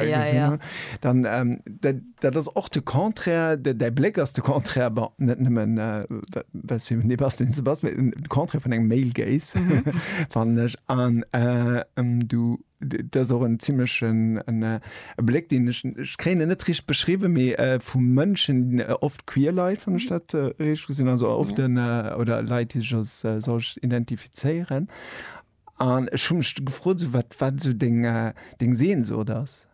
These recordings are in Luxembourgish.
Ja, gesinn ja. hunn, dann ähm, dat, dat ass och de Contraire, de, däi Bléck ass de Contraire, bon, net nëmmen äh, wa- was fir nee, was den Sebast, mee den Contraire vun engem Male Gaze, fannen ech. An äh, ähm, du, d- dat ass och en ziemlechen en, äh, e Bléck, deen ech, ech kréien en net richt beschriwwen, mee äh, vu Mënschen, äh, oft queer Leit, wann ech dat äh, richteg gesinn, also oft den, äh, oder Leit, déi sech als äh, solch identifizéieren. An ech hu mech du gefrot, esou wat wat esou deng deng Sehnsucht ass.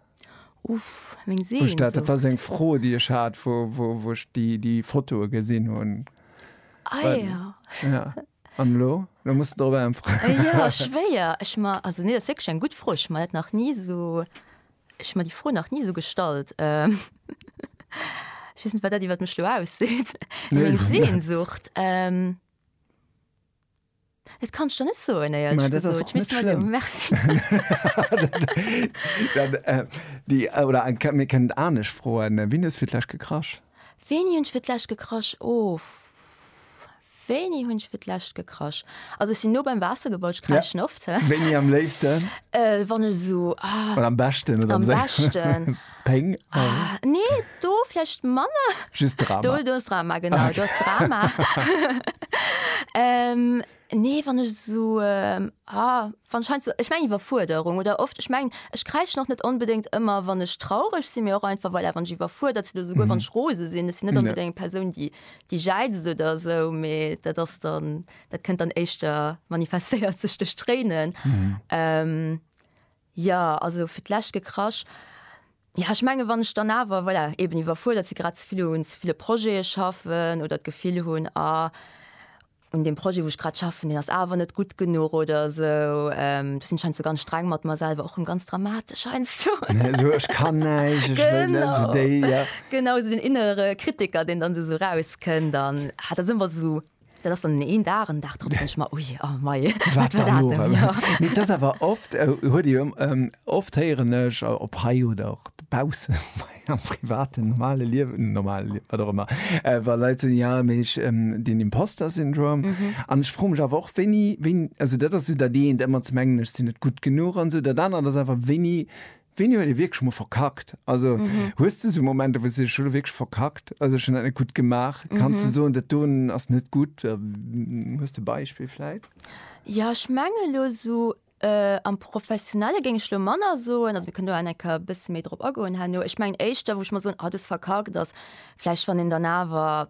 Uff, meng Sehnsucht. Wou ech dat, dat war esou eng Fro déi ech hat, wou wou wou ech déi déi Fotoe gesinn hunn. Ah ja. Ja. An elo? Elo muss de drop äntweren. Jo, schwéier. Ech ma, also nee, dat ass wierklech eng gutt Fro. Ech hu mer dat nach ni esou, ech hu mer déi Fro nach ni esou gestallt. Ech weess net wat dat iwwert mech elo ausseet. Meng Sehnsucht? Dat kann ech der net soen, éierlech gesot. Misst mer dem Merci. Oder mir kënnen et anescht froen, Wien hues fir d'lescht gekrasch? Wéini hunn ech fir d'lescht gekrasch? Oh, wéini hunn ech fir d'lescht gekrasch? Also ech sinn no beim Waasser gebaut, ech kraschen oft. Wéini am léifsten? Wann ech esou, ah. Oder am beschten oder am séiersten? Am beschten. Péng. Ah, nee, do vläicht manner. Just Drama. Do, do ass Drama, genau. Ah, okay. Do ass Drama. ähm, nee, wann ech so, ähm, ah, wann scheint so, ich meng Iwwerfuerderung oder oft, ich meng, ich kräisch noch net unbedingt immer, wann ech traurig sinn, mir och einfach, voilà, wann ech iwwerfuerdert sinn, souguer mhm. wann ech rose sinn, ech sinn net unbedingt eng Persoun, die, die jäizt oder so, mee dat ass dann, dat kënnt dann éischter manifestéiert sech duerch Tréinen. Mhm. Ähm, Jo, also fir d'lescht gekrasch. Jo, ech mengen, wann ech dann awer, voilà, eeben iwwerfuerdert si, grad ze vill un ze ville Projete schaffen oder d'Gefill hunn, ah, un deem Projet, wou ech grad schaffen, deen ass awer net gutt genuch oder esou. Do sinn ech heiansdo ganz streng mat mer selwer, och rëm ganz dramatesch heiansdo. Esou, ech kann näischt, ech wëll net, esou déi, ja. Genau, esou deen innere Kritiker, deen dann esou erauskënnt an, ah, dat ass ëmmer esou. Dat ass dann een Dag, en Dag drop denken ech mer, ui, a mei, wat war dat elo? Mee et ass awer oft, huet ee jo oft, héieren ech op hei oder och dobaussen am privaten, normale Liewen, normale Liewen, wat och ëmmer, wa Leit soen, jo, mee ech, den Imposter-Syndrom. An ech froe mech awer och, wéini, wéini, also dat ass esou dat eent, ëmmer ze mengen, ech sinn net gutt genuch an esou. Dat anert ass einfach, wéini Wéini huet ee wierklech mol verkackt? Also, hues de esou Momenter, wou s de dees, ech hu lo wierklech verkackt, also ech hunn dat net gutt gemaach? Kanns de soen, dat do ass net gutt? Hues de e Beispill vläit? Jo, ech menge lo esou am Professionelle géing ech lo manner soen, also mir kënnen do awer eng Kéier e bësse méi drop agoen herno. Ech mengen éischter, wou ech mol soen, ah, do hues de verkackt, ass vläicht, wann een dann awer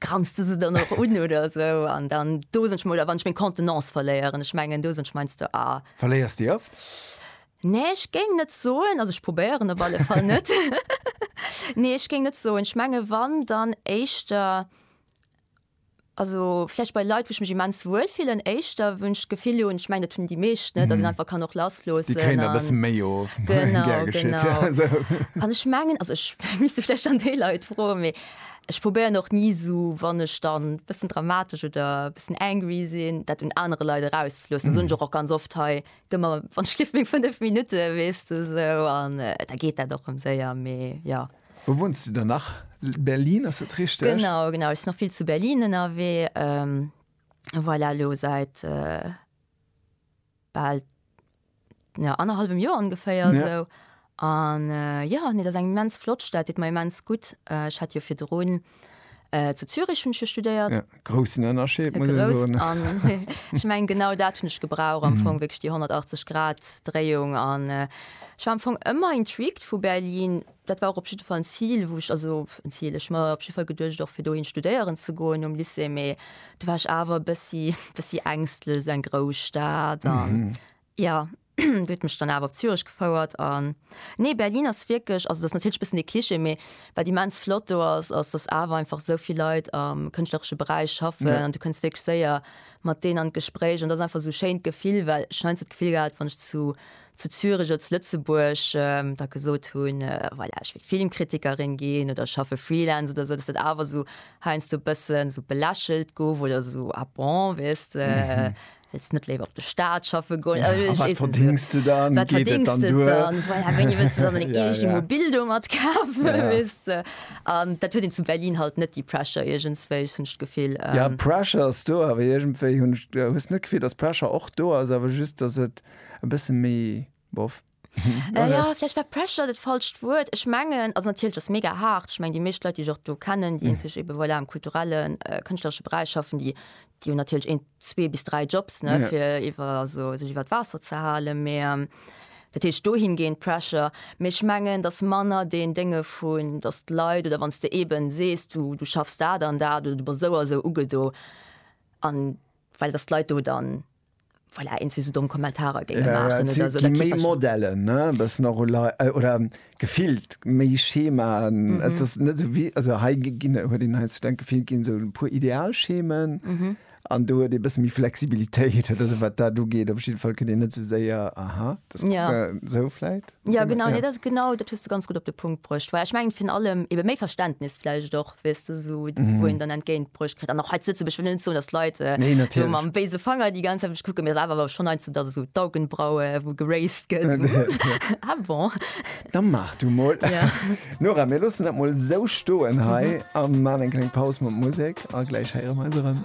Granz de se dann och un oder esou an dann dosen ech mol oder wann ech meng Contenance verléieren. Ech mengen dosen ech meinst du ah. Verléiers de oft? Nee ech géing net soen, also ech probéieren op alle Fall net. Nee ech géing net soen, ech menge wann dann éischter also vläicht bei Leit wou ech mech immens wuel fillen éischter, wou ech d'Gefill hunn, ech mengen dat hunn déi meescht, ne, datt een einfach kann och lassloossen an. Déi kréien der e bësse méi of. Genau, genau. An ech mengen, also ech misst vläicht dann déi Leit froen, mee Ech probéieren och ni esou, wann ech dann e bëssen dramatesch oder e bëssen angry sinn, dat un anere Leit erauszloossen. Dat soen ech och och ganz oft hei, Gëff mer, wann ech lief, meng fënnef Minutte, weess de esou. An da geet dat och rëm séier. Mee jo. Wou wunns de dann nach? Berlin, ass dat richteg? Genau, genau. Ech sinn nach vill zu Berlin ënnerwee. Voilà, elo säit bal ja, annerhallwem Joer ongeféier ja. esou. An äh, ja, nee, dat ass eng immens flott Stad, deet mer immens gutt. Äh, ech hat jo virdrun äh, zu Zürich hunn ech jo studéiert. Ja, groussen Ënnerscheed, muss ech soen. Ech meng, genau dat hunn ech gebraucht, am mhm. Fong wéinst déi 180 Grad Dréiung an äh, Ech war am Fong ëmmer intrigued vu Berlin, Dat war och op jidde Fall en Zil, wou ech, also en Zil, ech mer op jidde Fall geduecht och fir dohin studéieren ze goen nom Lycée, mee do war ech awer e bëssi, bëssi ängstlech, esou eng grouss Stad an jo, déi huet mech dann awer op Zürich gefouert an nee, Berlin ass wierklech, also dat ass natierlech e bëssen e Klischee, mee wat immens flott do ass, ass dass awer einfach esou vill Leit am kënschtlereche Beräich schaffen an du kënns wierklech séier mat deenen an d'Gespréich an dat ass einfach esou e schéint Gefill, well ech hunn heiansdo d'Gefill gehat, wann ech zu zu Zürich oder zu Lëtzebuerg da gesot hunn, voilà, ech wëll Filmkritikerin ginn oder ech schaffe Freelance oder esou, dass dat awer esou heiansdo e bësse sou belächelt gouf oder esou, ah bon, weess de, wëlls net léiwer op de Staat schaffe goen? A wat verdéngs de dann? Wat verdéngs de dann? Voilà, wéini wëlls de dann deng eegt Immobil do mat kafen, weess de? An dat huet een zu Berlin halt net, déi Pressure iergendswéi, ech hunn d'Gefill. Jo, Pressure ass do, awer iergendwéi hunn ech, hues de net d'Gefill, dass Pressure och do ass, awer just, dass et. e bësse méi bof. Äh ja, vläicht war Pressure dat falscht Wuert. Ech mengen, also natierlech ass mega haart. Ech mengen, déi meescht Leit, déi ech och do kennen, déi eenzeg ebe voilà am kulturellen, kënschtleresche Beräich schaffen, déi déi hunn natierlech een, zwee bis dräi Jobs, ne, fir iwwer also sech iwwer d'Waasser ze halen. Mee dat heescht dohingehend Pressure. Mee ech mengen, dass manner deen Dénge vun, dass d'Leit oder wann s de eeben sees, du du schaffs dat an dat oder du bass esou a esou ugedo an well dass d'Leit do dann, Voilà, eens wéi se domm Kommentarer géinge maachen oder esou. Et gi méi Modellen, e bëssen och oder gefillt méi Schemaen. Et ass net esou wéi, also hei ginn, huet een hei zu denke, vill ginn esou e puer Idealschemen an do huet ee bësse méi Flexibilitéit. Also wat dat ugeet, op jiddwer Fall kënnt een net esou séier, aha, dat esou vläit. Ja genau, nee, dat ass genau, dat hues de ganz gutt op de Punkt bruecht. Well ech mengen, virun allem ebe méi Verständnis vläicht och, weess de, esou wou een dann entgéint bruecht kritt. An och hei zu Lëtzebuerg, ech wëll net soen, datt d'Leit esou Nee, natierlech. mam béise Fanger déi ganz Zäit op mech kucken, mee et ass awer schonn heiandsdo, datt esou d'Augenbraue wou geraised gëtt, esou hm, ah bon. Da maach du mol. Ja. Nora, mir loossen dat mol esou stoen hei a maan eng kleng Paus mat Musek a gläich héiere mer eis erëm.